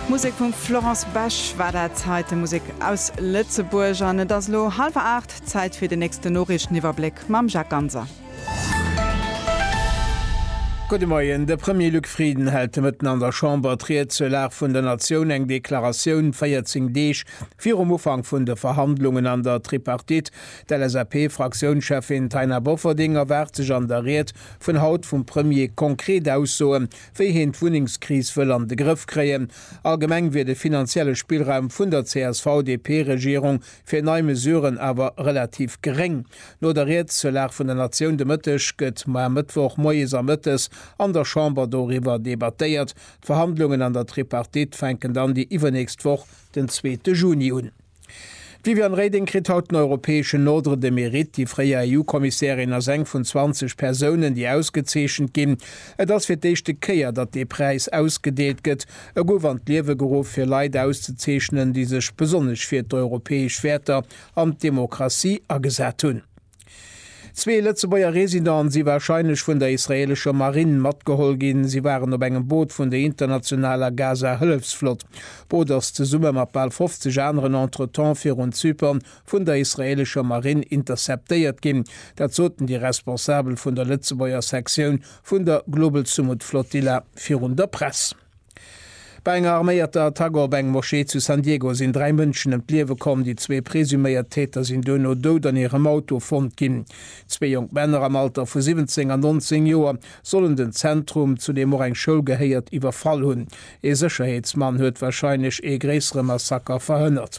Musek vum Florence Besch war dat heite, Musek aus Lëtzebuerg. An et ass elo hallwer 8, Zäit fir den nächsten Noriichteniwwerbléck mam Jacques Ganser. Gudde Moien. De Premier Luc Frieden hält de Mëtten an der Chamber d'Ried zur Lag vun der Natioun, eng Deklaratioun 14 Deeg virum Ufank vun de Verhandlungen an der Tripartite. D'LSAP-Fraktiounscheffin Taina Bofferding erwaart sech an der Ried vun haut vum Premier konkret Aussoen wéi heen d'Wunnengskris wëll an de Grëff kréien. Allgemeng wier de finanzielle Spillraum vun der CSV-DP-Regierung fir nei Mesuren awer relativ geréng. No der Ried zur Lag vun der Natioun de Mëtteg gëtt mar Mëttwoch moies a mëttes an der Chamber doriwwer debattéiert. D'Verhandlungen an der Tripartite fänken dann déi iwwernächst Woch, den zweete Juni, un. D'Viviane Reding kritt haut den europäeschen Ordre de Mérite. Déi fréier EU-Kommissärin ass eng vun 20 Persounen, déi ausgezeechent ginn. Et ass fir d'éischte Kéier, datt dee Präis ausgedeelt gëtt. E gouf an d'Liewe geruff, fir Leit auszezeechnen, déi sech besonnesch fir d'europäesch Wäerter an d'Demokratie agesat hunn. Zwee Lëtzebuerger Residenten si warscheinlech vun der israeelescher Marinn matgeholl ginn. Si waren op engem Boot vun der internationaler Gaza-Hëllefsflott. D'Boot ass zesumme mat bal 50 aneren entretemps virun Zypern vun der israeelescher Marinn interceptéiert ginn. Dat soten déi Responsabel vun der Lëtzebuerger Sektioun vun der Global Sumud Flotilla virun der Press. Bei enger arméierter Attack op eng Moschee zu San Diego sinn dräi Mënschen ëm d'Liewe komm. Déi zwee presuméiert Täter sinn duerno dout an hirem Auto fonnt ginn. Zwee jonk Männer am Alter vu 17 an 19 Joer sollen den Zentrum, zu deem och eng Schoul gehéiert, iwwerfall hunn. Ee Sécherheetsmann huet warscheinlech ee gréissere Massaker verhënnert.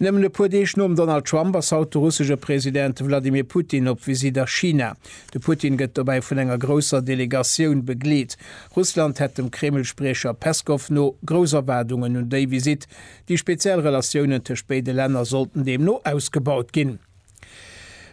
Nëmmen e puer Deeg nom Donald Trump ass haut de russesche President Wladimir Putin op Visitt a China. De Putin gëtt dobäi vun enger grousser Delegatioun begleet. Russland hätt dem Kreml-Spriecher Peskow no grouss Erwaardungen un déi Visitt. Déi speziell Relatiounen tëscht béide Länner sollten deemno ausgebaut ginn.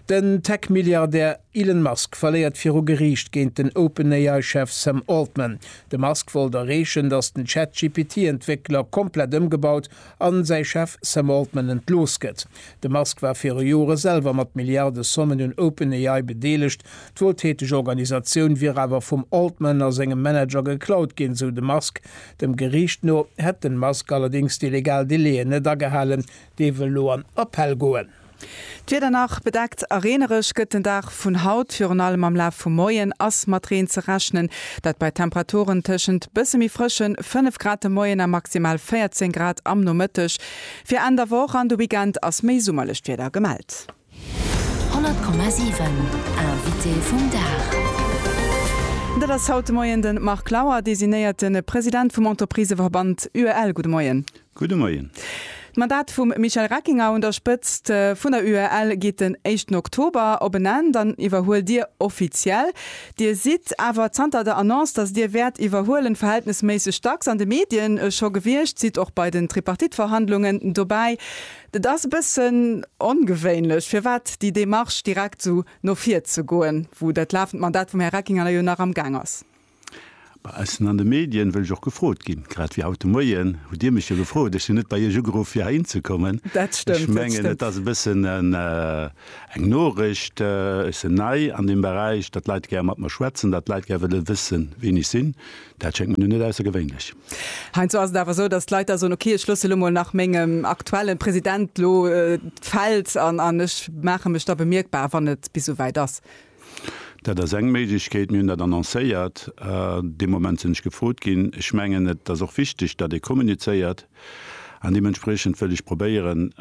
Den Tech-Milliardär Elon Musk verléiert viru Geriicht géint den OpenAI-Chef Sam Altman. De Musk wollt erreechen, datt den ChatGPT-Entwéckler komplett ëmgebaut an säi Chef Sam Altman entlooss gëtt. De Musk war viru Jore selwer mat Milliardesommen un OpenAI bedeelegt. D'wueltäteg Organisatioun wier awer vum Altman a sengem Manager geklaut ginn, sou de Musk. Dem Geriicht no hätt den Musk allerdéngs déi legal Delaien net agehalen, Dee wëll elo an Appell goen. D'Wieder nach bedeckt a reenereg gëtt den Dag vun haut. Virun allem am Laf vum Moien ass mat Reen ze rechnen, dat bei Temperaturen tëschent bësse méi frësche 5 Grad de Moien a maximal 14 Grad am Nomëtteg. Fir Enn der Woch an de Weekend ass méi summerlecht Wieder gemellt. 100,7 Invité vum Dag. Dat ass haut de Moien de Marc Lauer, designéierte President vum Entrepriseverband UEL. Gudde Moien. Gudde Moien. D'Mandat vum Michel Reckinger un der Spëtzt vun der UEL geet den éischten Oktober op en Enn. Dann iwwerhuelt Dir offiziell. Dir sidd awer zanter der Annonce, datt Dir wäert iwwerhuelen, verhältnesméisseg dacks an de Medien scho gewiescht, sidd och bei den Tripartite-Verhandlungen dobäi. Et ass e bëssen ongewéinlech, firwat déi Démarche direkt esou no vir ze goen, wou dat lafend Mandat vum Här Reckinger jo nach am Gaang ass? Bei eis an de Medien wëll ech och gefrot ginn, grad wéi haut de Moien hutt Dir mech jo gefrot. Ech sinn net bei Iech ugeruff fir heihin ze kommen. Ech mengen, et ass e bëssen eng Noricht, ech sinn nei an deem Beräich, datt d'Leit gär mat mer schwätzen, datt d'Leit gär wëlle wëssen, wien ech sinn, dat schéngt mir nun net aussergewéinlech. Heinsdo ass et awer esou, datt d'Leit da soen, ok, ech loosse lo mol nach mengem aktuelle President lo d'Feld an an ech maache mech da bemierkbar, wann et bis esouwäit ass. Dat ass eng Méiglechkeet. Mir hunn dat annoncéiert dee Moment sinn ech gefrot ginn. Ech mengen, et ass och wichteg, datt ee kommunizéiert an deementspriechend wëll ech probéieren,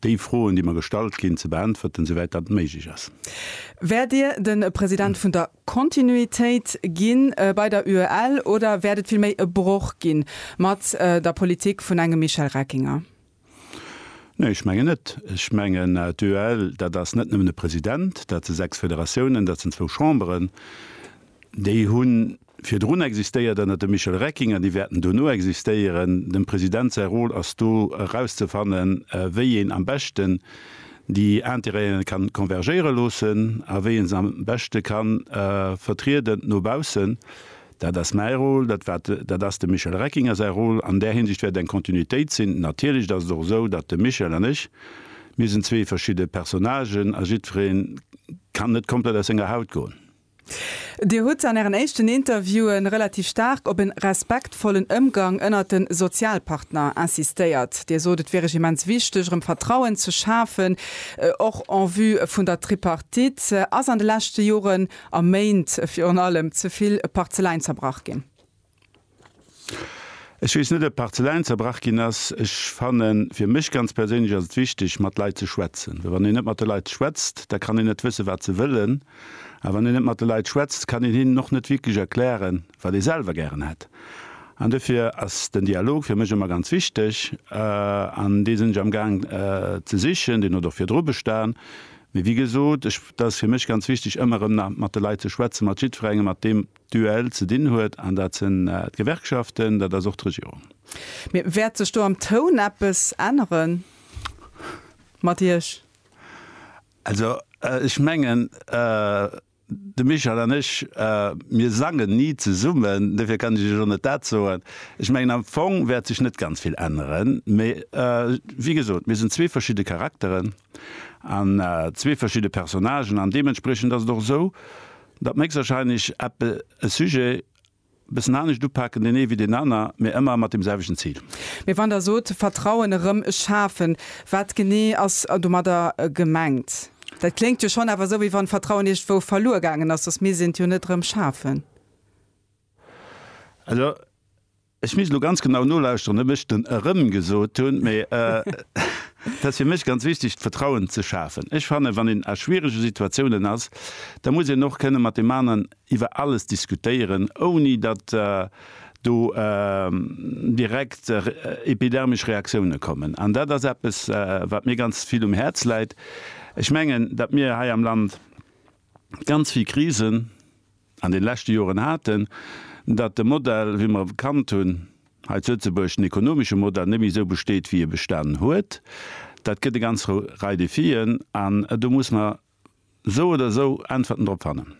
déi Froen, déi mer gestallt ginn, ze beäntwerten, esouwäit dat méiglech ass. Wäert Dir de President vun der Kontinuitéit ginn bei der UEL oder wäert et villméi e Broch ginn mat der Politik vun engem Michel Reckinger? Nee, ech mengen net. Ech mengen, d'UEL, dat ass net nëmmen e President, dat se sechs Federatiounen, dat sinn zwou Chamberen, déi hu virdrun existéiert ënner dem Michel Reckinger, déi wäerten dono existéieren. Dem President säi Rôle ass do erauszefannen, wéi een am beschten déi Intérêten kann konvergéiere loossen a wéi en se am beschte kann vertrieden no baussen. Dat ass mäi Rôle, dat war, dat ass dem Michel Reckinger säi Rôle. An där Hinsicht wäert eng Kontinuitéit sinn. Natierlech ass et och esou, datt de Michel an ech, mir sinn zwee verschidde Personnagen a jiddweree kann net komplett aus senger Haut goen. Dir hutt an ären éischten Interviewe relativ staark op e respektvollen Ëmgang ënnert de Sozialpartner insistéiert. Dir sot, et wier Iech immens wichteg, erëm Vertrauen ze schafen, och en vue vun der Tripartite. Ass an de leschte Joren a Méint virun allem ze vill Parzeleien zerbrach ginn? Ech weess net, ob Parzeläin zerbrach ginn ass. Ech fannen, fir mech ganz perséinlech ass et wichteg, mat Leit ze schwätzen. Well wann een net mat de Leit schwätzt, da kann een net wëssen, wat se wëllen. A wann een net mat de Leit schwätzt, kann een hinnen och net wierklech erklären, wat ee selwer gären hätt. An dofir ass den Dialog fir mech ëmmer ganz wichteg. An dee sinn ech amgaang ze sichen. Deen huet och virdru bestan. Mee wéi gesot, ech, dat ass fir mech ganz wichteg, ëmmer erëm nach mat de Leit ze schwätzen, mat jiddwerengem, mat deem, Duell ze dinn huet, an dat sinn d'Gewerkschaften, dat ass och d'Regierung. Mee wäert sech do am Toun eppes ännere mat Iech? Also ech mengen, de Michel an ech, mir sangen ni zesummen, dofir kann ech Iech och net dat soen. Ech mengen am Fong wäert sech net ganz vill änneren, mee wéi gesot, mir sinn zwee verschidde Charakteren. an zwee verschidde Personnagen an deementspriechend ass et och esou, datt mer héchstwahrscheinlech eppe e Sujet e bëssen anescht upaken, deen ee wéi deen aner, mä ëmmer mat deem selwechten Zil. Mee wann Der sot Vertrauen erëm schafen, wat genee ass domadder gemengt? Dat kléngt jo schonn awer esou, wéi wann Vertrauen iergendwou verluer gaangen ass, soss misst een et jo net erëm schafen. Also. Ech misst elo ganz genau nolauschteren, ob ech den erëm gesot hunn, mee et ass fir mech ganz wichteg, d'Vetrauen ze schafen. Ech fannen, wann een a schwierege Situatiounen ass, da muss een och kënne mat deem aneren iwwer alles diskutéieren, ouni datt do direkt epidermesch Reaktioune kommen. An dat ass eppes, wat mir ganz vill um Häerz läit. Ech mengen, datt mir hei am Land ganz vill Krisen, an den leschte Joren haten, datt de Modell, wéi mer e kannt hunn hei zu Lëtzebuerg, den ekonomesche Modell, net méi esou besteet, wéi e bestanen huet. Dat gëtt e ganz Rei Defien, an do muss mer esou oder esou Äntwerten drop fannen.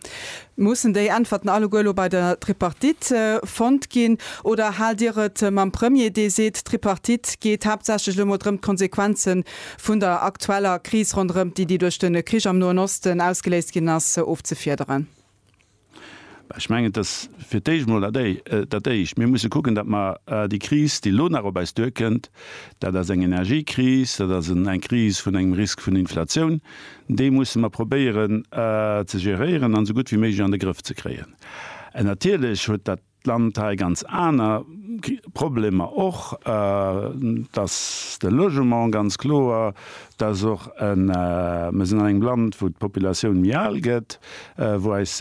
Mussen déi Äntwerten alleguer elo bei der Tripartite fonnt ginn, oder haalt Dir et mam Premier, dee seet, d'Tripartite geet haaptsächlech elo emol drëm, d'Konsequenze vun der aktueller Kris ronderëm d'Iddi duerch de Krich am Noen Osten ausgeléist ginn ass, ofzefiederen? Ech mengen, et ass fir d'éischt emol dat Éischt. Mir musse kucken, datt mer déi Kris, déi elo nach op eis duerkënnt, dat ass eng Energiekris, dat ass eng Kris vun engem Risk vun Inflatioun, déi musse mer probéieren ze geréieren an esou gutt wéi méiglech an de Grëff ze kréien. Natierlech huet dat d'Land hei ganz aner Problemer och, dass de Logement ganz kloer, dass och e, mir sinn an engem Land, wou d'Populatioun méi al gëtt, wou eis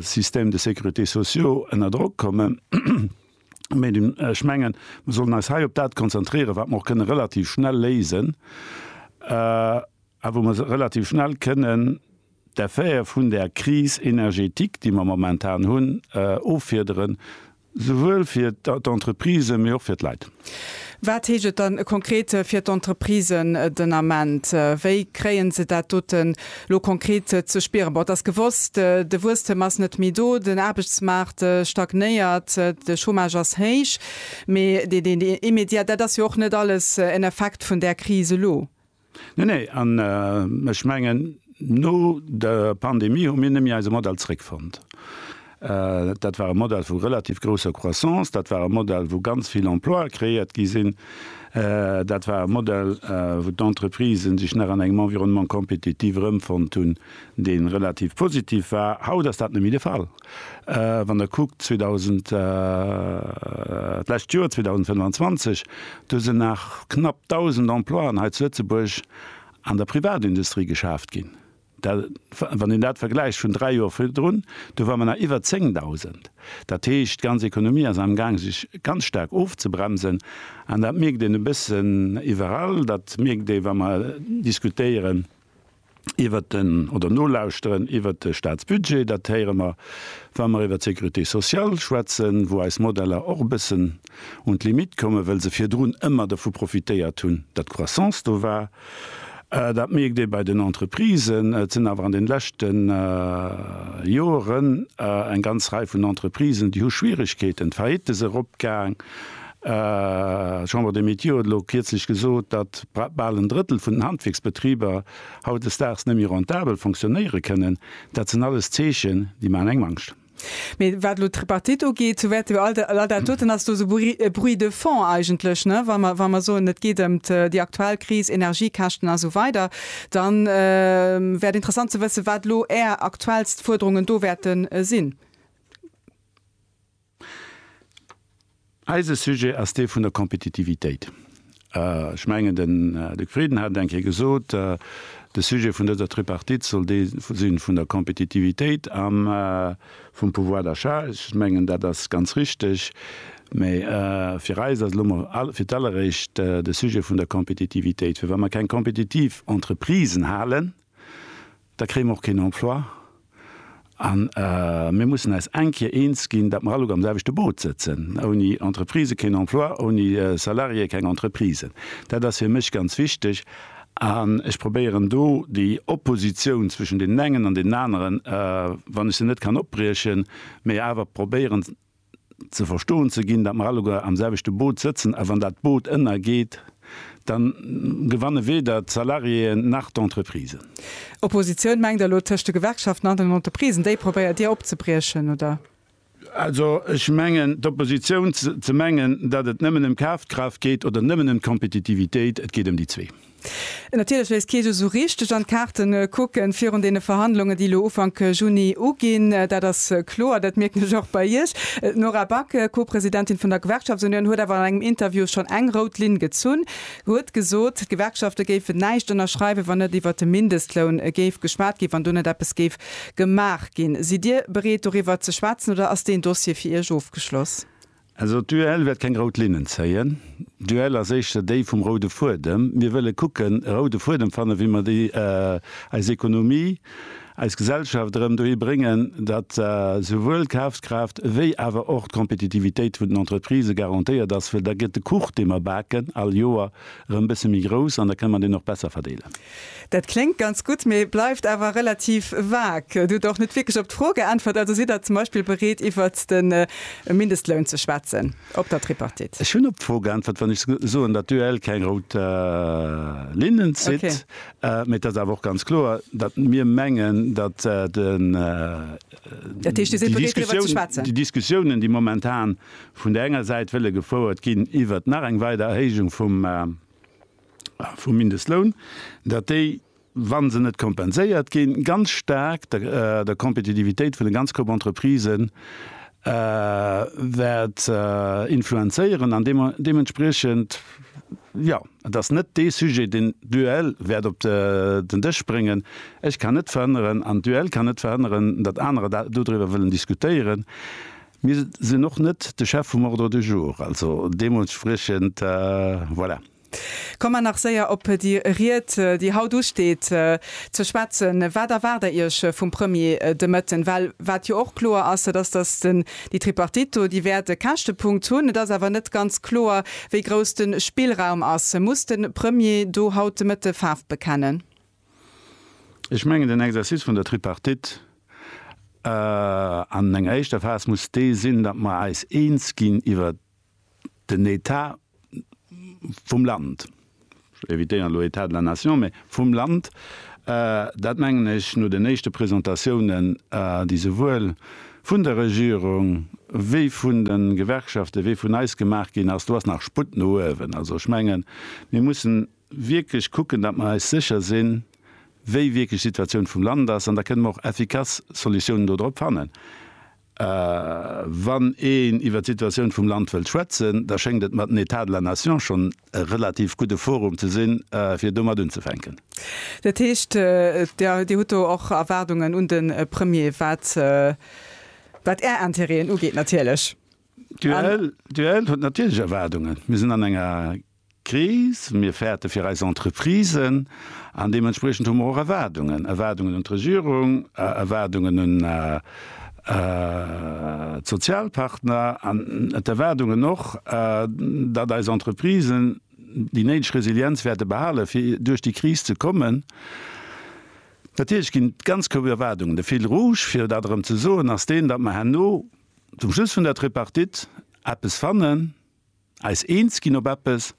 Systèmes de sécurité sociaux ënner Drock kommen. Mee ech mengen, mir sollen eis hei op dat konzentrieren, wat mer och kënnen relativ schnell léisen a wou mer relativ schnell kënnen, d'Affär vun där Crise énergétique, déi mer momentan hunn, offiederen, souwuel fir d'Entreprisen, mee och fir d'Leit. Wat heescht et dann konkret fir d'Entreprisen den Ament? Wéi kréien se dat doten elo konkret ze spieren? Bon, et ass gewosst, de Wuesstem ass net méi do, den Aarbechtsmaart stagnéiert, de Chômage ass héich, mee deen immediat, dat ass jo och net alles en Effekt vun där Crise elo. Nee, nee, an ech mengen, no der Pandemie hu mir nëmme eise Modell zréckfonnt. Dat war e Modell vu relativ grousser Croissance, dat war e Modell, wou ganz vill Emploie kreéiert gi sinn, dat war e Modell, wou d'Entreprisen sech nach an engem Environnement compétitif erëmfonnt hunn, dee relativ positiv war. Haut ass dat net méi de Fall. Wann Der kuckt 2000, d'lescht Joer, 2025, do sinn nach knapp 1.000 Emploien hei zu Lëtzebuerg an der Privatindustrie geschaaft ginn. Dat, wann een dat vergläicht vun dräi Joer virdrun, do ware mer nach iwwer 10.000. Dat heescht, d'ganz Ekonomie ass amgaang sech ganz staark ofzebremsen. An dat mierkt een e bëssen iwwerall. Dat mierkt ee wa mer diskutéieren, iwwert den, oder nolauschteren iwwert de Staatsbudget. Dat héiere mer, wa mer iwwert d'Sécurité sociale schwätzen, wou eis Modeller och e bëssen un d'Limitt kommen, well se virdrun ëmmer dovu profitéiert hunn, datt d'Croissance do war. Dat mierkt ee bei den Entreprisen. Et sinn awer an de leschte Joren eng ganz Rei vun Entreprisen, déi hu Schwierigkeeten. D'Faillite se eropgaang. D'Chambre des Métiers huet elo kierzlech gesot, datt bal en Drëttel vun den Handwierksbetriber hautdesdaags net méi rentabel fonctionnéiere kënnen. Dat sinn alles Zeechen, déi maachen engem Angscht. Mee wat elo d'Tripartite ugeet, sou wäerte mer all dat doten, ass do esou e Bruit de fond eigentlech, ne? Wa mer, wa mer soen, et geet ëm déi aktuell Kris, Energiekäschten a sou weider, da wär et interessant ze wëssen, wat elo Är aktuellst Fuerderungen do wäerte sinn. Eise Sujet ass dee vun der Kompetitivitéit. Ech mengen, den Här Luc Frieden hat et eng Kéier gesot, De Sujet vun dëser Tripartite soll dee si vun der Kompetitivitéit a vum Pouvoir d'achat. Ech mengen, dat ass ganz richtig. Mä fir eis ass elo emol fir d'alleréischt de Sujet vun der Kompetitivitéit. Well wa mer keng kompetitiv Entreprisen halen, da kréie mer och keen Emploi a mir mussen eis eng Kéier eens ginn, datt mer alleguer am selwechte Boot sëtzen, ouni Entreprisë keen Emploi, ouni Salariéë keng Entreprisen. Dat ass fir mech ganz wichteg an ech probéieren do déi Oppositioun zwëschen deenen engen an deenen aneren, wann ech se net kann opbriechen, mä awer probéieren, ze verstoen ze ginn, datt mer alleguer am selwechte Boot sëtzen, a wann dat Boot ënnergeet, da gewanne weder d'Salariéeën nach d'Entreprisen. Oppositioun mengt elo tëscht de Gewerkschaften an den Entreprisen, déi probéiert Dir opzebriechen, oder? Also ech mengen, d'Oppositioun ze mengen, datt et nëmmen ëm Kafkraaft geet oder nëmmen ëm d'Kompetitivitéit, et geet ëm déi zwee. Natierlech wéisst kee jo esou richteg an d'Kaarte kucken, virun deene Verhandlungen, déi elo Ufank Juni uginn. Dat ass kloer. Dat mierken ech och bei Iech. D'Nora Back, Co-Presidentin vun der Gewerkschaftsunion, huet awer an engem Interview schonn eng rout Linn gezunn, huet gesot, d'Gewerkschafte géifen näischt ënnerschreiwen, wann net iwwer de Mindestloun géif geschwat ginn, wann do net eppes géif gemaach ginn. Sidd Dir bereet doriwwer ze schwätzen oder ass deen Dossier fir Iech ofgeschloss? Also d'UEL wäert keng rout Linnen zéien. D'UEL ass éischter déi vum roude Fuedem. Mir wëlle kucken, e roude Fuedem fannen, wéi mer déi, eis Ekonomie, eis Gesellschaft erëm dohi bréngen, datt souwuel d'Kafskraaft wéi awer och d'Kompetitivitéit vun den Entreprisë garantéiert ass. Well da gëtt de Kuch, dee mer baken all Joer, erëm e bësse méi grouss an da kënne mer deen och besser verdeelen. Dat kléngt ganz gutt, mee bleift awer relativ vag. Et hutt och net wierklech op d'Fro geäntwert. Also sidd Der zum Beispill bereet iwwert de Mindestloun ze schwätzen op der Tripartite? Ech hunn op d'Fro geäntwert, wann ech soen, datt d'UEL keng rout Linnen zitt. Mee et ass awer och ganz kloer, datt mir mengen, datt déi Diskussiounen, déi momentan vun där enger Säit wëlle gefouert ginn iwwert nach eng weider Erhéijung vum, vum Mindestloun, datt déi, wa se net kompenséiert ginn, ganz staark der Kompetitivitéit vun de ganz Coop Entreprisë wäert influenzéieren an deementspriechend, jo, et ass net dee Sujet, deen d'UEL wäert op den Dësch bréngen. Ech kann net verhënneren an d'UEL kann net verhënneren, datt anerer dodriwwer wëllen diskutéieren. Mir sinn och net de Chef vum Ordre du jour, also deemooltspriechend, voilà. Kommen nach séier op déi Ried, déi haut usteet, ze schwätzen. Wat erwaart Der Iech vum Premier de Mëtten? Well wat jo och kloer ass, dat ass, dass déi Tripartite do, déi wäert e Käschtepunkt hunn. Et ass awer net ganz kloer, wéi grouss de Spillraum ass. Muss de Premier do haut de Mëtte Faarf bekennen? Ech mengen, den Exercice vun der Tripartite an enger éischter Phas muss dee sinn, datt mer eis eens ginn iwwer den État vum Land, ech evitéieren elo État de la Nation, mä vum Land. Dat mengen ech no den éischte Presentatiounen, déi souwuel vun der Regierung wéi vun de Gewerkschaften wéi vun eis gemaach ginn ass, do ass nach Sputt no uewen. Also ech mengen, mir mussen. wierklech kucken, datt mer eis sécher sinn, wéi wierklech d'Situatioun vum Land ass, an da kënnen mer och effikass Solutiounen do drop fannen. Wann een iwwert d'Situatioun vum Land wëllt schwätzen, da schéngt et mer den État de la nation schonn e relativ gudde Forum ze sinn, fir domat unzefänken. Dat heescht, Dir hutt do och Erwaardungen un de Premier, wat Är Intérêten ugeet natierlech. D'UEL huet natierlech Erwaardungen. Mir sinn an enger. Kris, mir fäerte fir eis Entreprisen an deementspriechend hu mer och Erwaardungen, Erwaardungen un d'Regierung, Erwaardungen un d'Sozialpartner an d'Erwaardungen och, datt eis Entreprisen déi néideg Resilienz wäerte behalen, fir duerch déi Kris ze kommen. Natierlech ginn ganz kouw Erwaardungen. De Fil rouge, fir dat erëm ze soen, ass deen, datt mer herno zum Schluss vun der Tripartite eppes fannen, Eis eens ginn op eppes,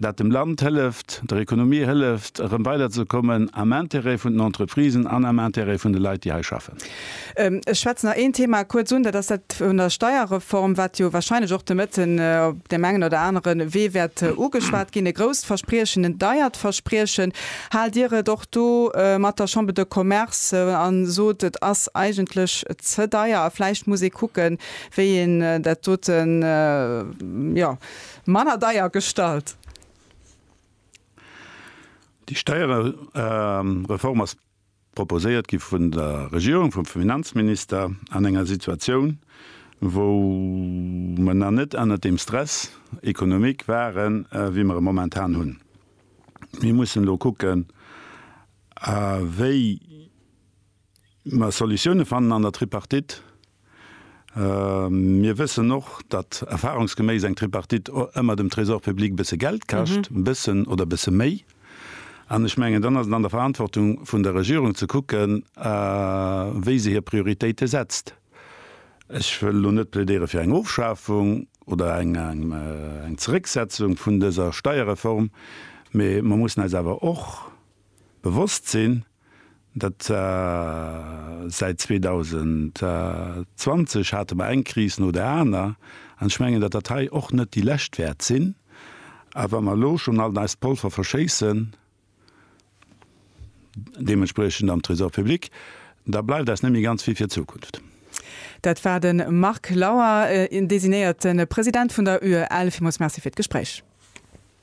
dat dem Land hëlleft, der Ekonomie hëlleft, erëm weiderzekommen am Intérêt vun den Entreprisen an am Intérêt vun de Leit, déi hei schaffen. Ech schwätzen nach een Thema kuerz un, dat ass dat vun der Steierreform, wat jo wahrscheinlech och de Mëtten op deem engen oder anere Wee wäert ugeschwat ginn. E grousst Verspriechen, en deiert Verspriechen. Haalt Dir et och do mat der Chambre de Commerce a sot, et ass eigentlech ze deier a vläicht muss ee kucken, Wéi een dat dote jo manner deier gestalt. Déi Steierereform ass proposéiert gi vun der Regierung, vum Finanzminister an enger Situatioun, wou mer nach net ënnert deem Stress économique waren, wéi mer e momentan hunn. Mir mussen elo kucken, wéi. Mä Solutioune fannen an der Tripartite. Mir wëssen och, datt erfahrungsgeméiss eng Tripartite ëmmer dem Trésor public e bësse Geld kascht, e bëssen oder e bësse méi. An ech mengen, dann ass et an der Verantwortung vun der Regierung ze kucken, wéi se hir Prioritéite setzt. Ech wëll elo net plädéiere fir eng Ofschafung oder eng Zerécksetzung vun dëser Steierreform, mä mer mussen eis awer och bewosst sinn, Dat säit 2020 hate mer eng Kris no der aner, an ech mengen, datt dat hei och net déi lescht wäert sinn. A wa mer elo schonn alt eist Polver verschéissen, deementspriechend am Trésor public, da bleift eis net méi ganz vill fir d'Zukunft. Dat war de Marc Lauer, designéierte President vun der UEL. Villmools Merci fir d'Gespréich.